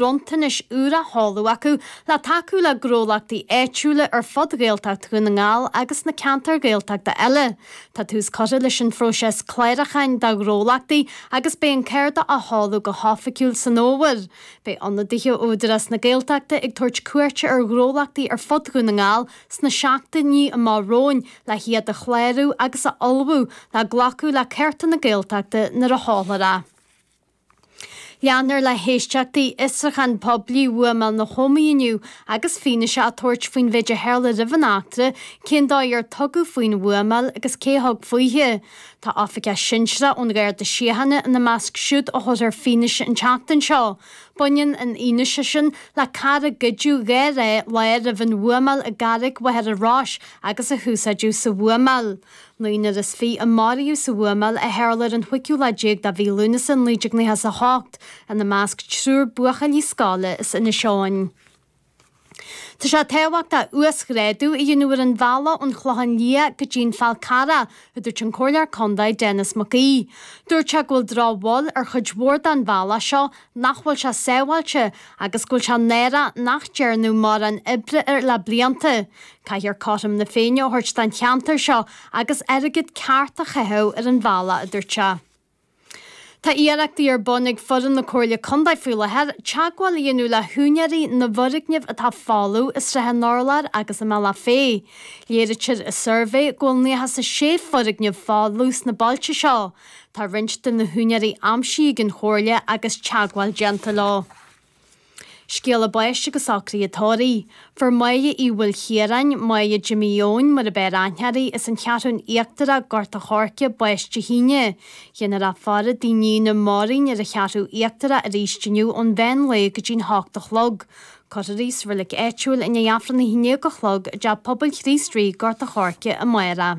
bronntanais úr á sheoladh acu le tacú le gnólachtaí áitiúla ar fud Ghaeltacht Dhún na nGall agus sna ceantair Ghaeltachta eile. Tá tús curtha leis an phróiseas clárúcháin do ghnólachtaí agus beidh an cárta á sheoladh go hoifigiúil san fhómhar. Beidh ionadaithe ó Údarás na Gaeltachta ag tabhairt cuairte ar ghnólachtaí ar fud Dhún na nGall sna seachtainí amach romhainn le hiad a chlárú agus a ullmhú le glacadh le cárta na Gaeltachta nuair a sheolfar é. Leanfar le héisteachtaí Fhiosrúchán Poiblí bhuamáil na hÓmaí inniu agus fianaise á tabhairt faoin mhéid a tharla roimh an eachtra, cén dóigh ar tugadh faoin bhuamáil agus cé a thug faoithi. Tá oifigeach sinsearach ón Gharda Síochána ina measc siúd a thabharfas fianaise an tseachtain seo. Baineann an fhianaise sin le carr a goideadh dhá lá roimh an bhuamáil i gCarraig Mhachaire Rois agus a húsáideadh sa bhuamáil. Naonúr is fiche a maraíodh sa bhuamáil a tharla ar an chúigiú lá déag de Mhí Lúnasa 1998, ina measc triúr buachaillí scoile as Inis Eoghain. Tá sé tábhachtach uasghrádu a dhéanamh ar an bhealach ón Chlochán Liath go dtí'n Fál Carrach, a dúirt an Comhairleoir Contae, Denis Mac Aoidh. Dúirt sé go bhfuil drochbhail ar chuid mhór den bhealach seo, nach bhfuil sé sábháilte agus go bhfuil sé náireach nach dearnadh mórán oibre air le blianta. Caithfear cothrom na Féinne a thabhairt don cheantar seo agus airgead ceart a chaitheamh ar an bhealach, a dúirt sé. Tá iarrachtaí ar bun ag foireann na Comhairle Contae faoi láthair teagmháil a dhéanamh le húinéirí na bhfoirgneamh atá folamh i Srath an Urláir agus i mBealach Féich. Léirítear i suirbhé go bhfuil 96 foirgneamh folamh sna bailte seo. Tá roinnt de na húinéirí aimsithe ag an Chomhairle agus teagmháil déanta leo. Scéala báis agus socruithe tórraimh. Fuair Máire Uí Mhaoilchiaráin, Máire Jimí Eoin, mar ab fhearr aithne uirthi, as an Cheathrúin Íochtarach, Gort a' Choirce, bás Dé hAoine. Dhéanfar a faire i dtigh a níne Máirín ar an Cheathrú Íochtarach arís inniu ón mheán lae go dtí'n hocht a chlog. Cuirfear í sa reilig áitiúil i ndiaidh Aifreann a haon déag a chlog i dteach pobail Chríost Rí, Gort a' Choirce, amárach.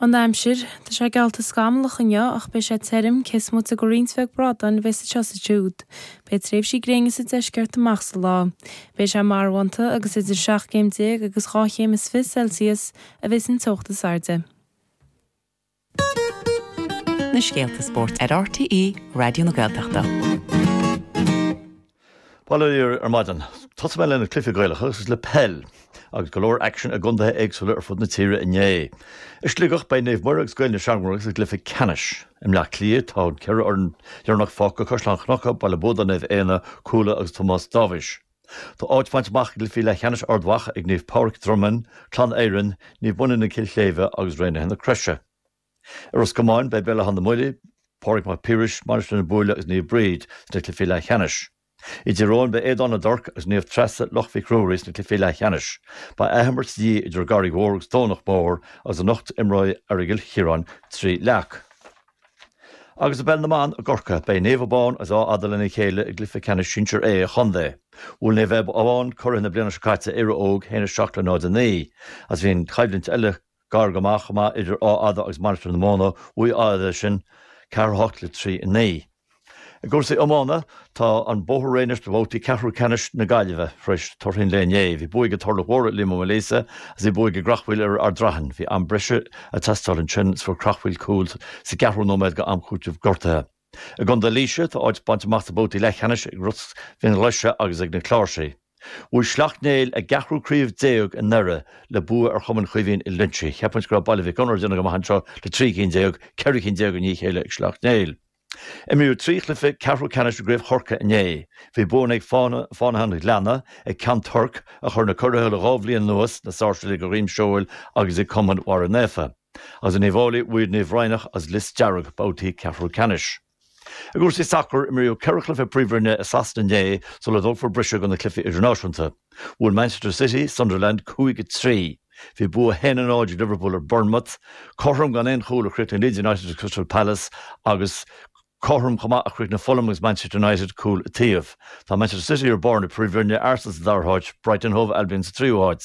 an aimsir. Tá sé geallta scamallach inniu ach beidh sé tirim, cé is moite de roinnt bheag brádáin a bheas anseo is ansiúd. Beidh tréimhsí gréine sa deisceart amach sa lá. Beidh sé marbhánta agus idir seacht gcéim déag agus dhá chéim is fiche Celsius a bheas an teocht is airde. na scéalta spóirt ar RTÉ Raidió na Gaeltachta. Bail ó Dhia oraibh ar maidin, tosóidh mé le na cluichí Gaelacha agus le peil, agus go leor aicsin i gcondaetha éagsúla ar fud na tíre inné. I Sligeach, beidh Naomh Muire agus Gaeil na Seamróige sa gcluiche ceannais. I mBleá Cliath, tá an ceathrar deireanach fágtha, Caisleán Cnucha, Baile Buadáin Naomh Éanna, Cuala agus Tomás Dáibhís. Tá áit bainte amach i gcluichí leathcheannais Ard Mhacha ag Naomh Pádraig Dromainn, Clann Éireann, Naomh Moninne Cill Shléibhe agus Raonaithe na Croise. I Ros Comáin, beidh Béal Átha na mBuillí, Pádraig Mac Piarais, Mainistir na Búille agus Naomh Bríd sna cluichí leathcheannais. I dTír Eoghain, beidh Éadan na dTorc agus Naomh Treasa, Loch Mhic Ruairí sna cluichí leathcheannais. Beidh athimirt de dhíth idir an gCarraig Mhór agus Domhnach Mór agus anocht imreoidh Aireagal Chiaráin Trí Leac. Agus i bpeil na mban i gCorcaigh, beidh Naomh Abán agus Áth Fhada lena chéile i gcluiche ceannais sinsir A an chontae. Bhuail Naomh Abán curaithe na bliana seo caite, Éire Óg, a haon a seacht le náid a naoi agus bhí an choimhlint eile, Gar go maith chomh maith idir Áth Fhada agus Mainistir na Móna. Bhuaigh Áth Fhada é sin, ceathair a hocht le trí a naoi. I gcúrsaí iomána, tá an bóthar réidh anois do bhabhtaí ceathrú ceannais na Gaillimhe tar éis torthaí an lae inné. Bhí buaidh ag Turlach Mhór ar Liam Ó Maoilíosa agus bhí buaidh ag Creachmhaoil ar Ard Raithin. Bhí am breise ag teastáil ansin agus fuair Creachmhaoil cúl sa gceathrú nóiméad go am cúiteamh gortuithe. I gContae Laoise, tá áit bainte amach do bhabhtaí leathcheannais ag Ros Fhionnghlaise agus ag na Cláirsigh. Bhuaigh Sleacht Néill a gceathrú craobh déag i nDoire le bua ar Chumann Chaoimhín Uí Loingsigh. Cheapfainn go raibh Baile Mhic Gonair ag déanamh go maith anseo le trí cinn déag, ceithre cinn déag i ndiaidh a chéile ag Sleacht Néill. Imríodh trí chluiche ceathrú ceannais i gcraobh Chorcaí inné. Bhí buanna ag Fánaithe an Ghleanna, ag Ceann Toirc, a chuir na curaithe le dhá bhliain anuas, na Sáirséalaigh de dhroim seoil agus ag Cumann Bharra Naofa. agus in Uíbh Fhailí bhuaigh Naomh Raghnach agus Lios Dearg babhtaí ceathrú ceannais. I gcúrsaí sacair, imríodh ceithre chluiche Príomhroinne i Sasana inné sula dtógfar briseadh do na cluichí idirnáisiúnta. Bhuail Manchester City Sunderland cúig a trí. Bhí bua 1 0 ag Liverpool ar Bournemouth. Cothrom gan aon chúl a chríochnaigh Leeds United agus Crystal Palace agus cothrom chomh maith a chríochnaigh Fulham agus Manchester United, cúl an taobh. Tá Manchester City ar barr na Príomhroinne, Arsenal sa dara háit, Brighton Hove Albion sa tríú háit.